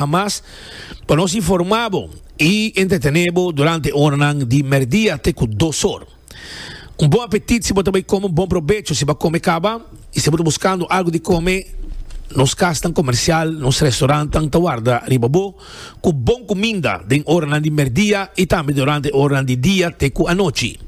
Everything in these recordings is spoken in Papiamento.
a mas pa nos informá bo i entretené bo durante e oranan di merdia te ku dos or. Un bon apetit si bo ta bai kome, un bon probecho si bo a kome kaba i si bo ta buskando algu di kome, nos kasnan komersial, nos restorannan ta warda riba bo ku bon kuminda den oranan di merdia i tambe durante e oranan di dia te ku anochi.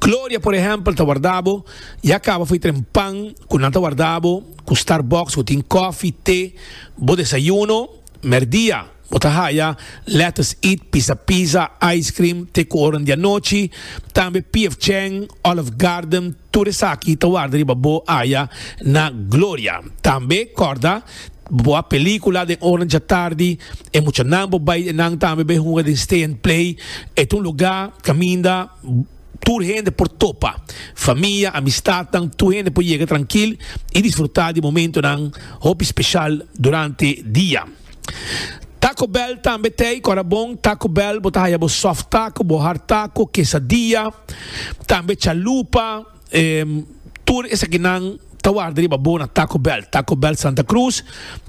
Gloria, por ehèmpel, ta warda bo i a kaba fai tren pan ku nan ta warda bo ku Starbucks ku tin kòfi, te, Bo desayuno, merdia, bo ta haya lèters eat, pisa pizza, ice cream, te ku oran di anochi, tambe PF Chang, Olive Garden, tur esaki ta warda riba bo aya na Gloria. Tambe kòrda, bo a pelíkula den oran djatardi, e muchanan bo bai enan tambe bai hunga den Stay and Play, e ta un lugá kaminda. Tur hende por topa, famia, amistadnan, tur hende por yega trankil i disfrutá di momentonan hopi speshal durante dia. Taco Bell tambe t'ei kòrda bon. Taco Bell bo ta haya bo soft taco, bo hard taco, quesadilla, tambe chalupa. Tur esakinan ta warda riba bo na Taco Bell. Taco Bell Santa Cruz,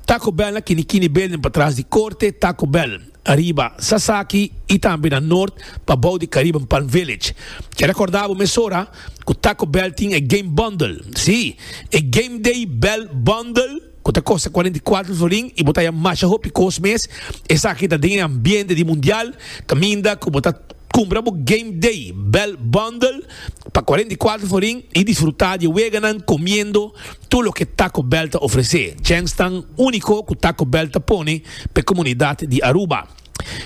Taco Bell na Kinikini Building patras di korte, Taco Bell. Ariba, Sasaki y tambe na Noord pa bou di Caribbean Palm Village. Ke recorda bo mesora cu Taco Bell tin e game bundle. Sí, e Game Day Bell Bundle cu ta costa cuarenta y cuatro florin y bo ta haya masha hopi cos mes. Esaki ta den e ambiente di Mundial caminda cu bo ta cumpra bo Game Day Bell Bundle pa cuarenta y cuatro florin y disfruta di e weganan comiendo. Tur loke Taco Bell ta ofresé, Jenks ta un úniko ku Taco Bell ta pone pa e komunidat di Aruba.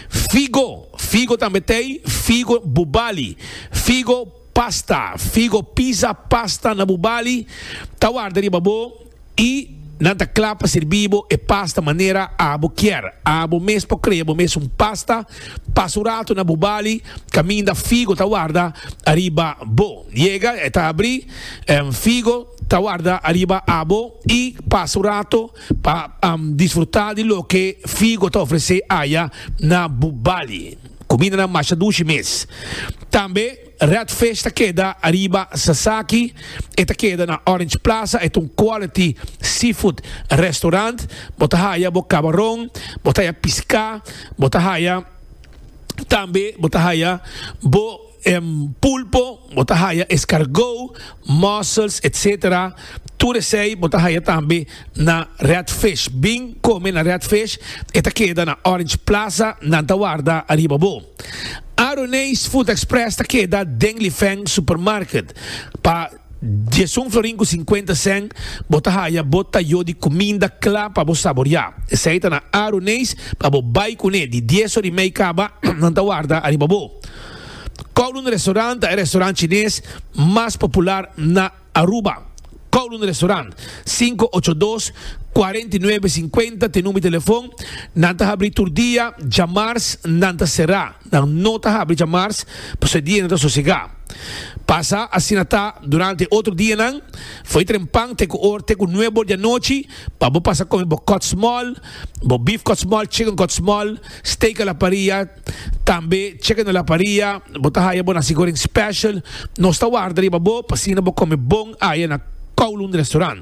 Figo, figo tambe t'ei, figo bubali, figo pasta, figo pizza pasta na bubali ta warda riba bo i nan ta kla pa sirbi bo e pasta manera abo kier. Abo mes por krea bo mes un pasta, pasa un ratu na bubali kaminda figo ta warda riba bo. Yega e ta abri, Figo. ta warda ariba abo y pasa un rato pa disfruta di loke Figo ta ofrece aya na Bubali. Cumindanan masha dushi mes. Tambe Red Fish ta keda ariba Sasaki, e ta keda na Orange Plaza, e ta un quality seafood restaurant. Bo ta haya bo cabaron, bo ta haya pisca, bo ta haya tambe bo ta haya bo. Pulpo, bo ta haya escargot, mussels, etc. Tur esey bo ta haya tambe na Red Fish. Bin come na Red Fish, e ta keda na Orange Plaza, nan ta warda ariba bo. Aroneis Food Express ta keda den Lifeng Supermarket. Pa. Dies un florin cu cincuenta cent bo ta haya bo ta yo di cuminda cla pa bo saboria. Esey ta na aru neis pa bo bay cune di dies or y mey caba nan ta warda ariba bo. Kowloon Restaurant ta e restaurant Chines mas popular na Aruba. Kowloon Restaurant, cinco ocho dos, cuarenta y nuebe cincuenta t'e number di telefon. Nan ta habri tur dia, djamars nan ta cera. Nan no ta habri djamars pasobra e dianan ta sosegá. Pasa asina ta durante e otro dianan. Fo'i tren pan te ku or te ku nuebe or di anochi pa bo pasa kome bo kòtsmòl, bo bif kòtsmòl, chicken kòtsmòl, steak a la paria, tambe chicken a la paria. Bo ta haya bo nasi goreng special. Nos ta warda riba bo pa asina bo kome bon aya na Kowloon Restaurant.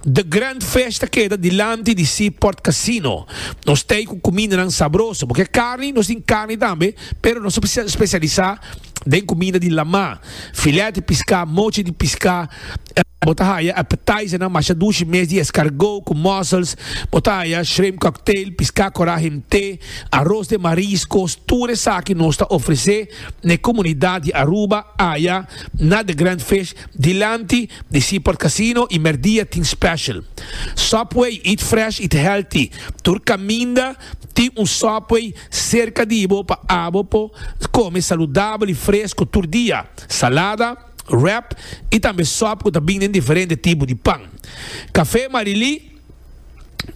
The Grand Fish ta keda dilanti di Seaport Casino. Nos ta ei ku kumindanan sabroso. Bo ke karni? Nos tin karni tambe, pero nos ta spesialisá den kuminda di lamá, filèt di piská, mochi di piská. Bo ta haya appetizernan masha dushi mes di eskargó ku mussels. Bo ta haya shrimp cocktail, piská korá himté, aros den mariskos. Tur esaki nos ta ofresé na e komunidat di Aruba, aya na The Grand Fish. Dilanti di Seaport Casino y merdia tin special Subway eat fresh eat healthy tur caminda tin un Subway cerca di bo pa abo por come saludabel y fresco tur dia salada wrap y tambe sub cu ta bin den diferente tipo di pan Café Marilí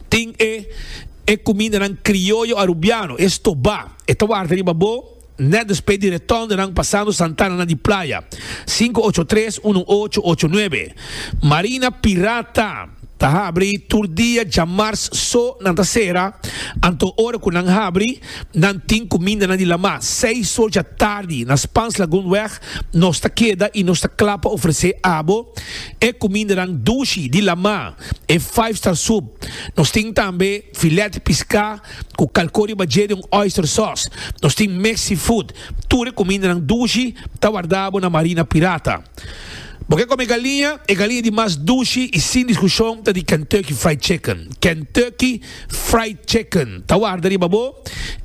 tin e e cumindanan crioyo Arubiano e stoba e ta warda riba bo. Net despe di reton di nan pasando Santana na di playa, sinku ocho tres unu ocho ocho nuebe, Marina Pirata ta habri tur dia djamars so nan ta sera, anto ora ku nan habri nan tin kumindanan di lama, seis or dja tardi na Spans Lagoon weg nos ta keda i nos ta kla pa ofresé abo e kumindanan dushi di lama, e five star soup, nos tin tambe filèt piská, cu calco riba dje di un oyster sauce. Nos tin mix seafood. Tur e cumindanan dushi ta wardabo na marina pirata. Bo ke come galiña? E galiña di mas dushi y sin discusion ta di Kentucky Fried Chicken. Kentucky Fried Chicken ta warda riba bo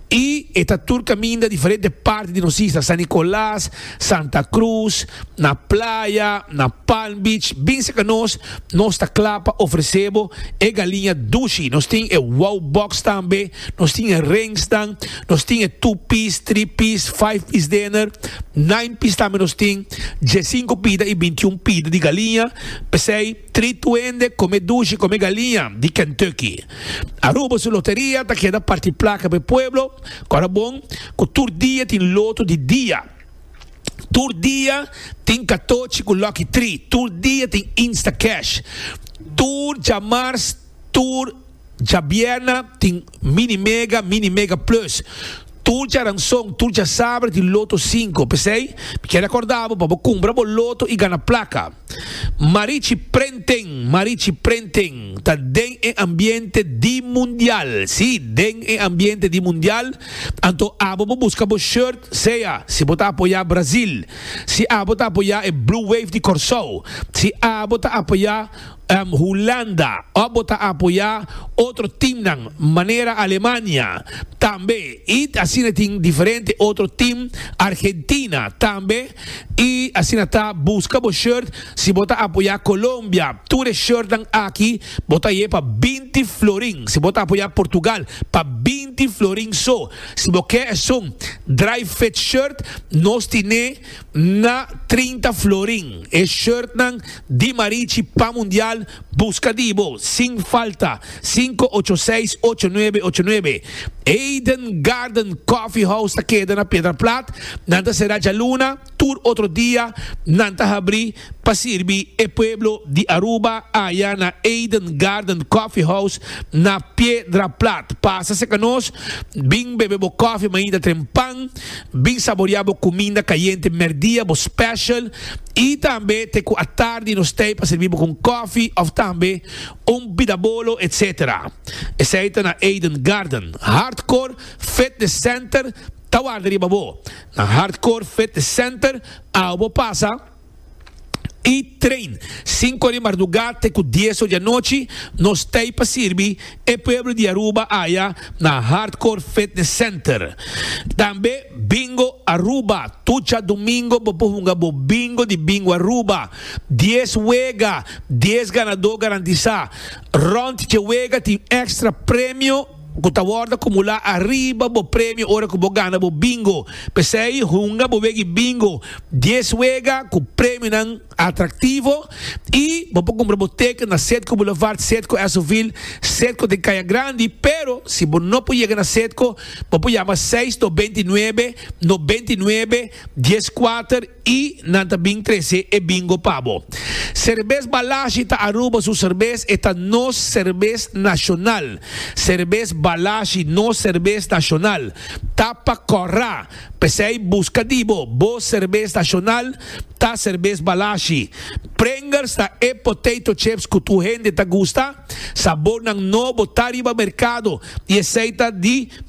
y e ta tur caminda diferente parti di nos isla, San Nicolas, Santa Cruz, na Playa, na Palm Beach, bin serka nos, nos ta kla pa ofresé bo e galiña dushi. Nos tin e Wow Box tambe, nos tin e ringsnan, nos tin e two piece, three piece, five piece dinner, nine piece tambe nos tin, diesinco pida i bintiun pida di galiña, p'esei three tuende kome dushi, kome galiña di Kentucky. Aruba su loteria ta keda parti plaka pa e pueblo. Kòrda bon ku tur dia tin lotu di dia. Tur dia tin katochi ku Lucky Tri. Tur dia tin Instacash. Tur djamars, tur djabierna tin Mini Mega, Mini Mega Plus. Tur djaranson, tur djasabra tin Loto Sinku. P'esei, mi kere akòrda bo pa bo kumpra bo loto i gana plaka. Marichi Prenten Marichi Prenten ta den e ambiente di mundial, si, den e ambiente di mundial, anto abo bo buska bo shirt sea si bo ta apoya Brasil, si abo ta apoya e Blue Wave di Corsou, si abo ta apoya Hulanda of bo ta apoya otro teamnan manera Alemania tambe y asina tin diferente otro team Argentina tambe. Y asina ta, busca bo shirt si bo ta apoya Colombia. Tur e shirtnan aki bo ta ye pa binti florin si bo ta apoya Portugal, pa binti florin so. Si bo ke esun dry fit shirt, nos tine na trinta florin. E shirtnan di Marichi pan mundial, busca di bo sin falta. Sinku ocho seis ocho nuebe ocho nuebe Eden Garden Coffee House ta keda na Piedra Plat nan ta sera djaluna tur otro dia nan ta habri pa sirbi e pueblo di Aruba aya na Eden Garden Coffee House na Piedra Plat pasa cerca nos bin bebe bo coffee mainta trempan bin saboria bo cuminda cayente merdia bo special y tambe te cu atardi nos stay pa sirbi bo con coffee of tambe Un bida bolo etc. Esei ta na Eden Garden. Hardcore Fitness Center ta warda riba bo. Na Hardcore Fitness Center awe bo pasa y train. Sinku ora di marduga te ku dies ora di anochi nos ta ey pa sirbi e pueblo di Aruba aya na Hardcore Fitness Center. Tambe Bingo Aruba. Tucha domingo bo por hunga bo Bingo di Bingo Aruba. Dies wega, dies ganadó garantisá. Rònt dje wega tin èkstra premio ku ta wòrdu akumulá ariba bo premio ora ku bo gana bo bingo. P'esei hunga bo wega i bingo dies wega ku premionan atraktivo i bo por kumpra bo teken na Sedco Boulevard, Sedco Esoville, Sedco den Kaya Grandi. Pero si bo no por yega na Sedco, bo por yama seis no beinti nuebe no beinti nuebe dies kuater. I nan ta bin trese e bingo pa bo. Serbes Balashi ta Aruba su serbes, e ta nos serbes nashonal. Serbes Balashi, nos serbes nashonal, ta pa kòrra. P'esei buska di bo, bo serbes nashonal ta serbes Balashi. Pringles ta e potato chips ku tur hende ta gusta. Sabornan nobo ta riba merkado i esei ta di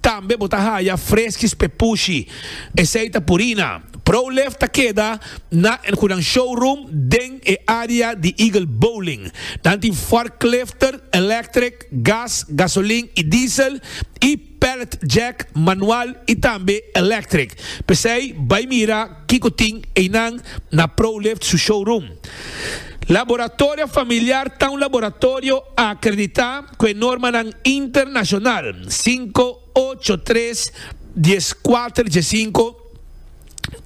Tambe bo ta haya freskis p'e pushi. Esei ta Purina. ProLift ta keda na El Hunan Showroom den e area di Eagle Bowling. Nan tin forklifter, electric, gas, gasolin i diesel, i pallet jack, manual i tambe electric. P'esei bai mira Kiko tin einan na ProLift su showroom? Laboratorio Familiar ta un laboratorio akreditá ku e normanan internashonal sinku, ocho, tres, dies, kuater, dje sinku.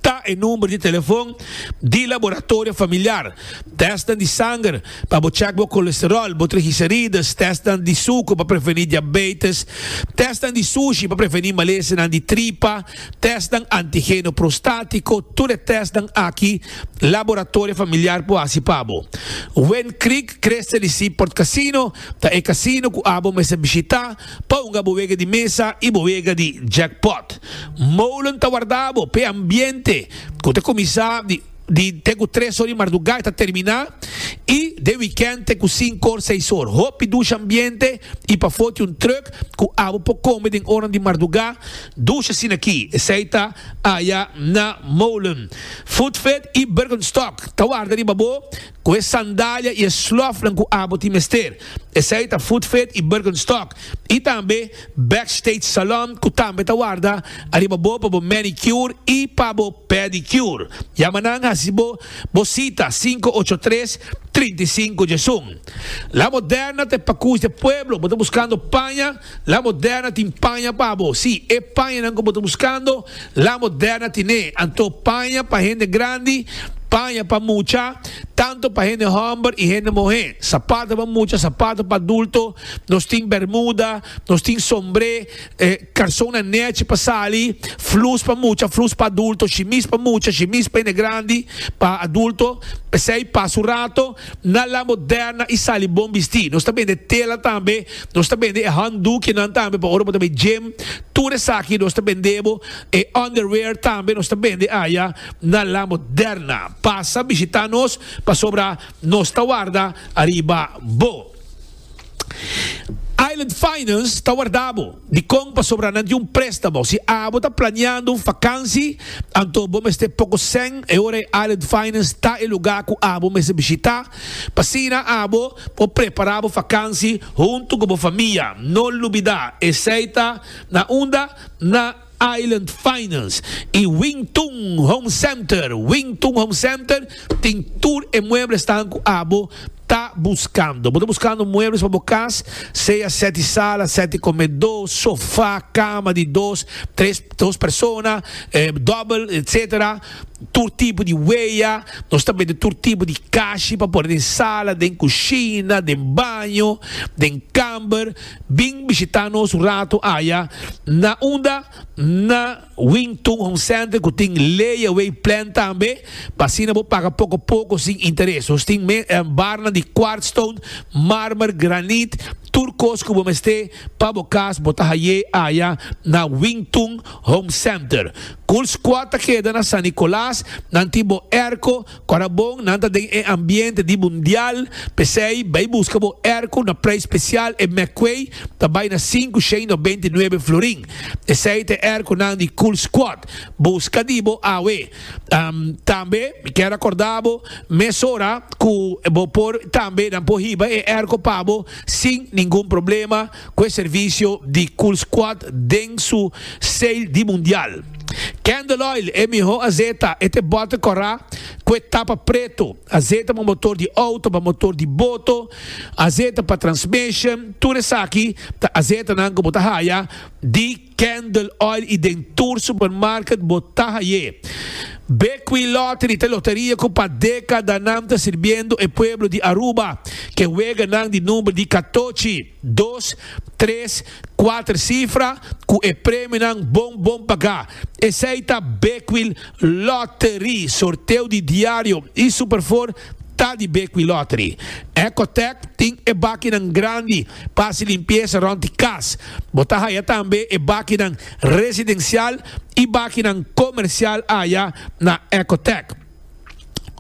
Ta e number di telefon di Laboratorio Familiar. Tèstnan di sanger pa bo chèk bo kolesteròl, bo trigiserides, tèstnan di suker pa prevení diabeites, tèstnan di sushi pa prevení malesenan di tripa, Testnan antigeno prostátiko, Tur e testnan aki laboratorio familiar por hasi pa bo. Wind Creek Crystal y Seaport Casino ta e casino cu abo mester bishita pa hunga bo wega di mesa y bo wega di jackpot. Molen ta warda bo p'e ambiente cu ta cuminsa di. Di te ku tres or di mardugá i ta terminá i den wikènt te ku sinku or, seis or. Hopi dusha ambiente i pafó tin un trùk ku abo por kome den ornan di mardugá. Dusha sinakí esei ta aya na Molen, Foodfed i Bergenstock ta warda riba bo. ku e sandalia i e slòfnan ku abo tin mester, esei ta Footfit i Birkenstock, i tambe Backstage Salon ku tambe ta warda ariba bo pa bo manicure i pa bo pedicure. Yama nan hasi bo bo sita sinku ocho tres, trinta i sinku djesun. La Moderna ta e Pakus di e Pueblo. Bo ta buskando paña? La Moderna tin paña pa bo. Sí, e pañanan ku bo ta buskando, La Moderna tin'é. Anto paña pa hende grandi, paña pa mucha, tantu pa hende hòmber i hende muhé, sapato pa mucha, sapato pa adulto, nos tin bermuda, nos tin sombré, karsonnan nèchi pa sali, flus pa mucha, flus pa adulto, shimis pa mucha, shimis pa hende grandi, pa adulto, p'esei pas un rato. Na La Moderna i sali bon bistí. Nos ta bende tela tambe. Nos ta bende e hòndukienan tambe pa ora bo ta bai gim. Tur esaki nos ta bende bo. E underwear tambe nos ta bende aya na La Moderna. Pasa bishitá nos pasobra nos ta warda ariba bo. Island Finance ta warda bo. Dikon pasobra nan tin un préstamo. Si abo ta planeando un fakansi, anto bo mester poko sèn e ora e Island Finance ta e lugá ku abo mester bishitá. Asina abo por prepará bo fakansi huntu ku bo famia. No lubidá, esei ta na unda na. Island Finance y Wing Tun Home Center, Wing Tun Home Center tin tur e muebles tahan cu abo ta buscando. Bo ta buscando muebles pa bo cas, sea sete sala, sete comedo, sofa, cama di dos, tres, dos persona, double, etc. Tur tipo di wea, nos ta bende tur tipo di cashi pa pone den sala, den cushina, den baño, den camber. Bin bishitá nos un ratu aya na unda na Wing Tun Home Center ku tin layaway plan tambe pa asina bo paga poko poko sin interes. Nos tin barnan di quartz stone, marmer, granit, tur kos ku bo mester pa bo kas bo ta hay'é aya na Wing Tun Home Center. Cool Squad ta keda na San Nicolas, nan tin bo airco, Ora bon nan ta den e ambiente di mundial, p'esei bai buska bo erko na prijs spesial e McQuay ta bai na sinku shei no beinti nuebe florin. Esei ta e erkonan di Cool Squad. Buska di bo awe. Tambe mi kier rakorda bo mesora ku bo por tambe nan por hiba e erko pa bo sin ningun problema. cu e servicio di Coolsquad den su sale di mundial. Candle Oil, e miho azeta, e te bote cora cu e tapa preto, azeta pa motor di auto, pa motor di boto, azeta pa transmission, tur esaki ta azetanan cu bo ta haya di. Candle Oil y den tur supermarket bo ta haye. Bekwee Lottery ta loteria cu pa decadanan ta sirbiendo e pueblo di Aruba ke weganan di number di catochi, dos, tres, cuater cifra cu e premionan bon bon paga. Esey ta Bekwee Lottery. Sorteo di diario y Superfour ta di Bekwee Lottery. Ecotech tin e bakinan grandi. Pa hasi limpiesa rond di kas. Bo ta haya tambe e bakinan residensial i bakinan komersial aya na Ecotec.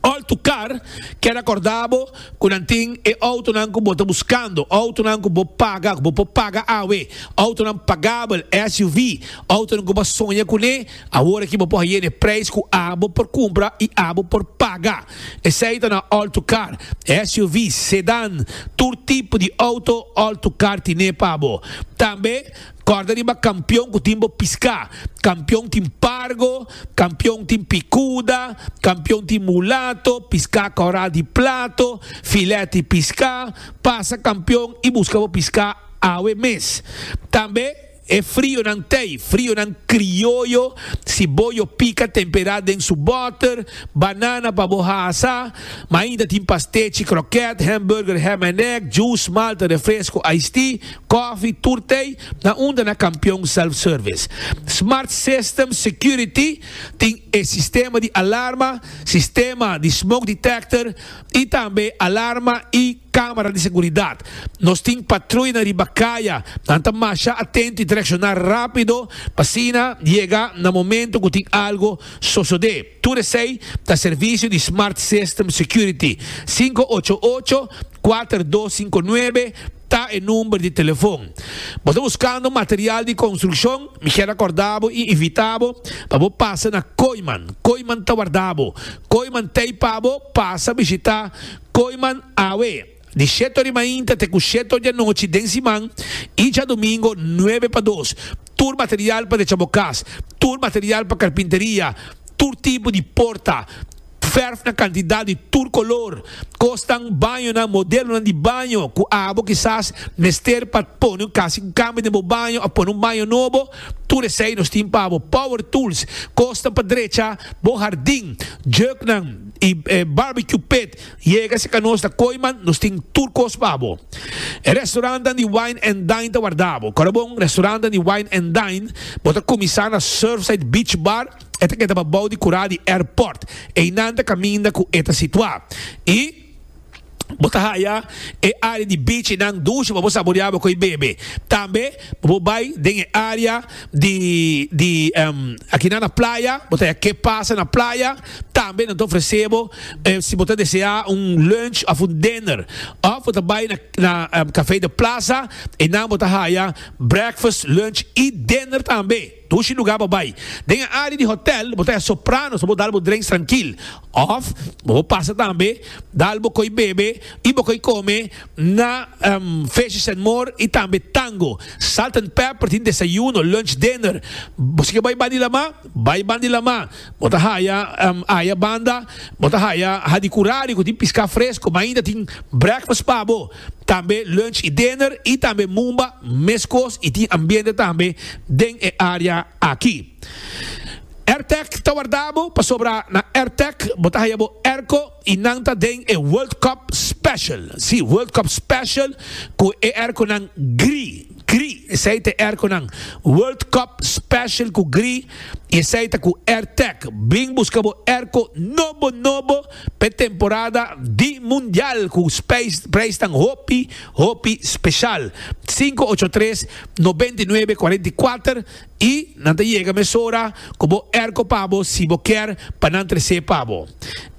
Òl tu kar, keda kordá bo ku nan tin e outonan ku bo ta buskando, outonan ku bo paga, ku bo por paga awe, outonan pagabel, SUV, outonan ku bo a soña kuné. Awor aki bo por haye n'e prijs cu abo por cumpra y abo por paga. Esey ta na all-to-car, SUV's, sedan, tur tipo di auto all-to-car tine pa bo. Tambe corda riba Campeon cu tin bo pisca. Campeon tin Pargo, Campeon tin Picuda, Campeon tin Mulato, pisca Corral di Plato, Filet y Pisca. Pasa Campeon y busca bo pisca awe mes. Tambe. E frionan tei, frionan krioyo, si bo yo pika tempera den su boter, banana pa bo hasa, ma ainda tin pastechi, kroket, hamburger, ham and egg, juice, malta, refresco, iced tea, kofi, tur tei, na unda na Kampion Self Service. Smart Systems Security tin e sistema di alarma, sistema di smoke detector y tambe alarma y. Camera di seguridad. Nos tin patruina riba caya, nan ta masha atento y ta reacciona rapido pa asina yega na momento cu tin algo sosode. Tur esey ta servicio di Smart System Security. Sinku ocho ocho, kuater dos sinku nuebe ta e number di telefon. Bo ta buscando material di construccion? Mi kier acorda bo y invita bo pa bo pasa na Kooiman. Kooiman ta warda bo. Kooiman ta y pa bo pasa bishita Koiman awe, di sheto di mainta te ku sheto di anochi den siman i djadumingu nuebe pa dos, tur material pa decha bo kas, tur material pa karpinteria, tur tipo di porta, fèrf na kantidat di tur kolor, kosnan, bañonan, modelonan di baño ku abo kisas mester pa pone un kasi ku kambia den bo baño òf pone un baño nobo, tur esei nos tin pa bo. Power tools, kosnan pa drecha bo hardin, jèuknan. Y e barbecue pit yega si ca nos ta coy man nos tin tur cos pa bo. E restaurantnan di wine and dine ta warda bo. Ora bon restaurantnan di wine and dine bo ta cuminsa na Surfside Beach Bar e ta keda pa bou di cura di airport. Eynan ta caminda cu e ta situa. Y. Bo ta haya e área di bichinan dushi pa bo saboreá bo ku e bebe. Tambe pa bo bai den e área di di akinan na playa, bo ta haya ke pasa na playa. Tambe nan ta ofresé bo si bo ta deseá un lunch òf un dinner. Òf bo ta bai na Café de Plaza, einan bo ta haya breakfast, lunch i dinner tambe. Dushi lugar bo bai. Den e área di hotèl bo ta hèr sopranos pa bo dal bo drenks trankil. Òf bo por pasa tambe dal bo koi bebe i bo koi kome na Fishes and More i tambe Tango. Salt and Pepper tin desayuno, lunch, dinner. Bo si ke bai bandi Lamá, bai bandi Lamá. Bo ta haya aya banda bo ta haya Hadi Curari ku tin piská fresko. Mainta tin breakfast pa bo. Tambe lunch y dinner y tambe mumba mescos y tin ambiente tambe den e area aki. Airtec ta wardabo pasobra na Airtec bo ta haya bo airco y nan ta den e World Cup Special. Si, World Cup Special cu e airconan gri, gri. Esey ta e airconan World Cup Special cu gri y esey ta cu Airtec. Bring busca bo airco nobo, nobo. P'e temporada di Mundial ku preisnan hopi hopi speshal. Sinku ocho tres nobenta i nuebe kuarenta i kuater i nan ta yega mesora ku bo erko pa bo si bo kier pa nan tres'é pa bo.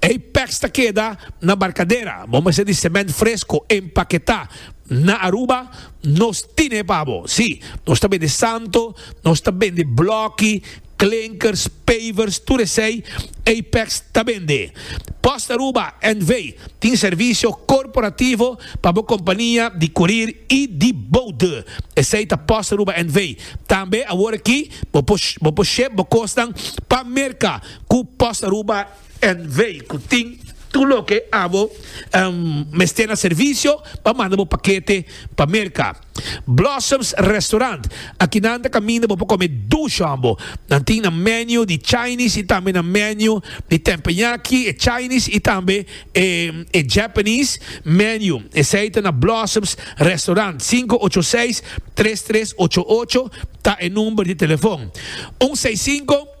Ei pèks ta keda na barkadera, bo mester di sèmènt fresko empaketá. Na Aruba nos tin'é pa bo. Sí, nos ta bende santo, nos ta bende blòki. Klinkers, pavers, tur esei Apex ta bende. Post Aruba NV. tin servisio korporativo pa bo kompania di kurir i di boude. Esei ta Post Aruba NV. Tambe awor aki bo por ship bo kosnan pa Merka ku Post Aruba. en vei cu tin tur loke abo mester na servicio pa manda bo pakete pa Merca. Blossoms Restaurant, aki nan ta caminda bo pa come duchon bo. Nan tin nan menu di Chinese y tambe nan menu di tempenyaki, e Chinese y tambe e Japanese menu. Esey ta na Blossoms Restaurant. Sinku ocho seis tres tres ocho ocho ta e number di telefon. Un seis sinku.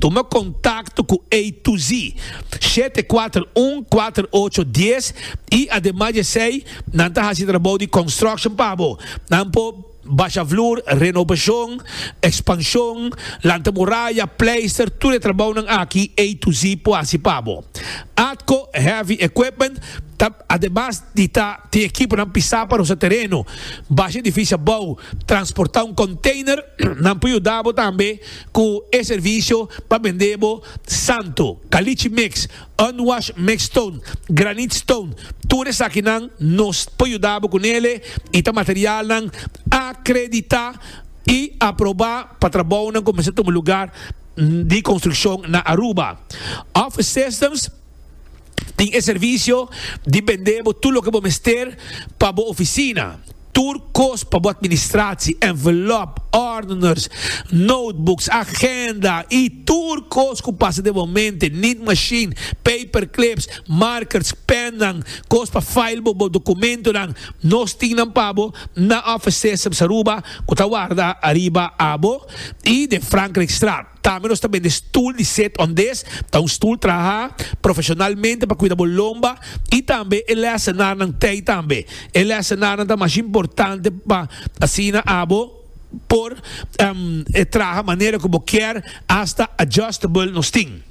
Tuma kontakto ku A to Z shete kuater un kuater ocho dies i ademas di esei nan ta hasi trabou di construction pa bo. Nan por basha vloer, renobashon, ekspanshon, lanta muraya, pleister, tur e trabounan aki A to Z por hasi pa bo. Atco Heavy Equipment ta ademas di ta tin ekiponan pisá pa rosa tereno, basha edifisio abou, transportá un konteiner, nan por yuda bo tambe cu e servicio pa bende bo santo, caliche mix, unwash mix stone, granite stone, tur esakinan nos por yuda bo cu nele y ta materialnan acredita y aproba pa trabounan cu mester tuma lugar di construccion na Aruba. Office Systems. Tin e servicio di bende bo tur loke bo mester pa bo oficina. Tur cos pa bo administratie, envelop, ordeners, notebooks, agenda y tur cos cu pasa den bo mente, need machine, paperclips, markers, pennan, cos pa file bo bo documentonan, nos tin nan pa bo na office system Saruba cu ta warda ariba abo y den Frankrijkstraat. Tambe nos ta bende stul di set on des ta un stul traha profesionalmente pa kuida bo lomba y tambe e lesenarnan tey tambe. E lesenarnan ta mas importante pa asina abo por traha manera cu bo kier hasta adjustable nos tin.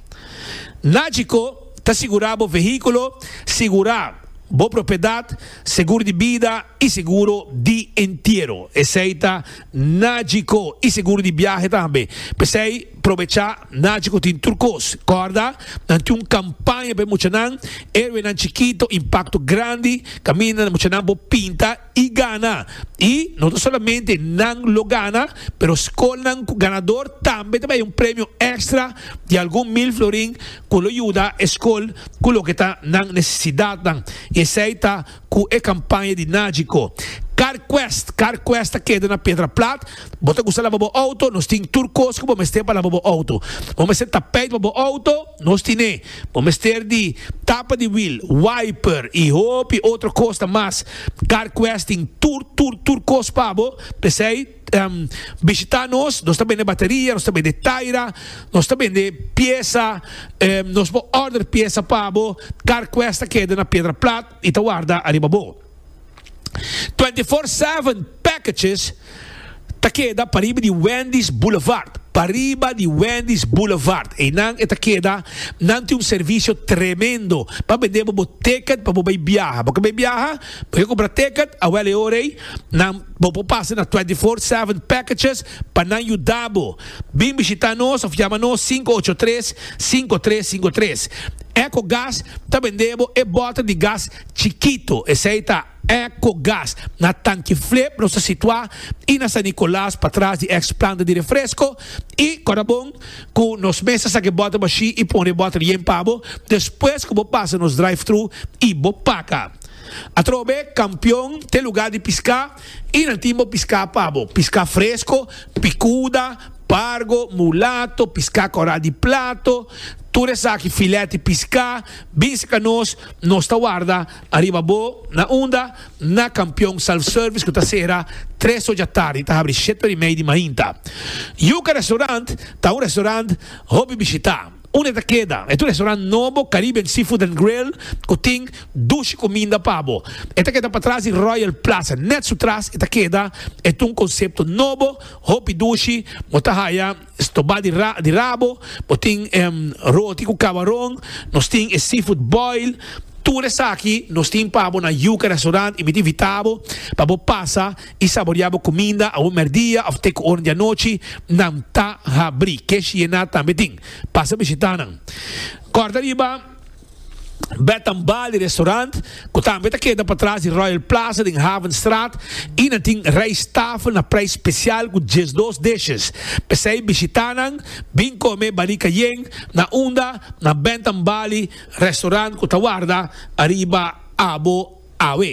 Nagico ta sigura bo vehiculo, sigura bo propiedad, segur di bida, y seguro di entiero, esey ta Nagico, y seguro di biahe tambe. P'esey, probecha, Nagico tin tur cos. Corda, nan tin un campaña pa e muchanan, Héroenan Chikito, Impacto Grandi, Caminda na Muchanan Bo Pinta y Gana. Y no ta solamente nan lo gana, pero scolnan cu ganador tambe ta bay un premio extra di algun mil florin cu lo yuda e scol cu loke ta nan necesidadnan, y esey ta. Cu e campaña di Nagico. Carquest, Carquest ta keda na Pedra Plat. Bo ta gusta laba bo auto? Nos tin tur cos cu bo mester pa laba bo auto. Bo mester tapijt pa bo auto? Nos tin'e. Bo mester di tapa di wiel, wiper y hopi otro cosnan mas. Carquest tin tur, tur, tur cos pa bo. P'esey. Um bishita nos, nos ta bende bateria, nos ta bende taira, nos ta bende piesa, um nos bo order piesa pa bo, car quest ta keda na piedra plat y ta warda ariba bo. Twenty four seven packages ta keda pariba di Wendy's Boulevard, pariba di Wendy's Boulevard, eynan e ta keda, nan tin un servicio tremendo pa bende bo bo ticket pa bo bay biaha, bo ken bay biaha, bo ken compra ticket, awel e ora ey nan. Bo por pasa na twenty four seven packages pa nan yuda bo. Bin bishita nos of yama nos sinku ocho tres, sinku tres sinku tres. Eco Gas ta bende bo e bota di gas chikito, esei ta Eco Gas. Na Tanki Flip nos ta situa i na San Nicolas patras di ex planta di refresco i Corabon cu nos mes ta saca e bota bashi i pone e bota yen pa bo despues cu bo pasa nos drive-thru i bo paca. Atrobe kampion te lugá di piská i nan tin bo piská pa bo. Piská fresko, pikuda, pargo, mulato, piská kòrá di plato, tur esaki filèt di piská bin serka nos, nos ta warda ariba bo. Na unda? Na kampion Self Service ku ta sera tres ocha tardi i ta habri shete ora i mei di mainta. Yuka Restaurant ta un restaurant hopi bishitá. Unda e ta keda? E ta un restaurant nobo, Caribbean Seafood and Grill, ku tin dushi kuminda pa bo. E ta keda patras di Royal Plaza. Nèt su tras e ta keda. E ta un konsepto nobo, hopi dushi. Bo ta haya stobá di ra di rabo, bo tin roti ku kabaron, nos tin e seafood boil. Tur esaki nos tin pa bo na Yuca Restaurant i mi ta invitá bo pa bo pasa i saboreá bo kuminda awor mèrdia òf te ku oren di anochi, nan ta habrí. Kesh Yená tambe tin. Pasa bishitá nan. Kòrda riba Bed and Bali Restaurant, ku tambe ta keda patras di Royal Plaza den Havenstraat, i nan tin rijsttafel na prijs spesial ku diesdos dishes. P'esei bishitá nan, bin kome Bali Cayenne na unda na Bed and Bali Restaurant ku ta warda ariba abo awe.